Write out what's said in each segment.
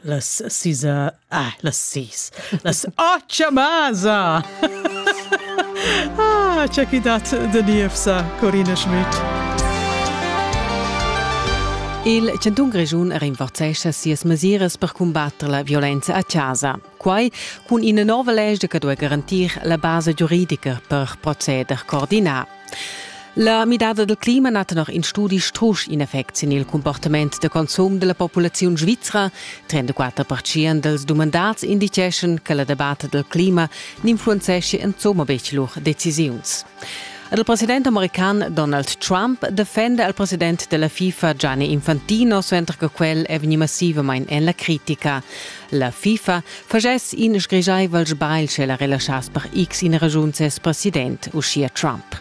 Las sis... Ah, las sis. Las otga masa! ah, c'è chi dat de Nievsa, Corina Schmidt. Il Chanton Grischun rinforzescha sias mesiras per cumbatter la violenza a casa. Quai cun ina nova legge che duai garantir la basa giuridica per proceder coordinà. La midada del clima ha tenor in studi strusch in effect sin il comportament de consum della populazione svizra. 34% dels dumandats indiceschan che la debata del clima n'influenzeschia insomma betg lur decisiuns. Ed il president american Donald Trump defenda il president della FIFA Gianni Infantino, suenter che quel è vegnì massivamain en la critica. La FIFA faschess in sgrigiaivel sbagl sche la relaschass per x in ragiun ses president, uschia Trump.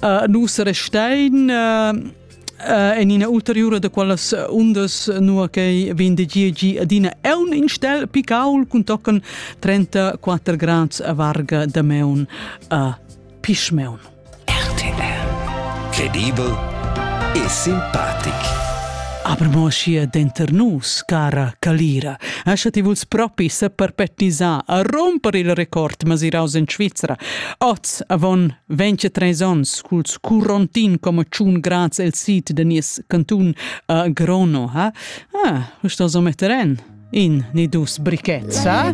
Uh, nus restein uh, uh, en ina ulteriura de quelles undas nua che vin de gi adina è un instel picaul cun tocken 34 grads a varga de meun a pischmeun. RTL Credibel e simpatic. Aber mo sia denter nus, cara Calira, ascha ti vuls propi se perpetisar a romper il record masiraus in Svizzera, oz avon Vegn che treis onns culs curontin come tschun grads el sid de nies cantun a Grono, ha? Ah, usta so metter en in ni dus brichets, ha?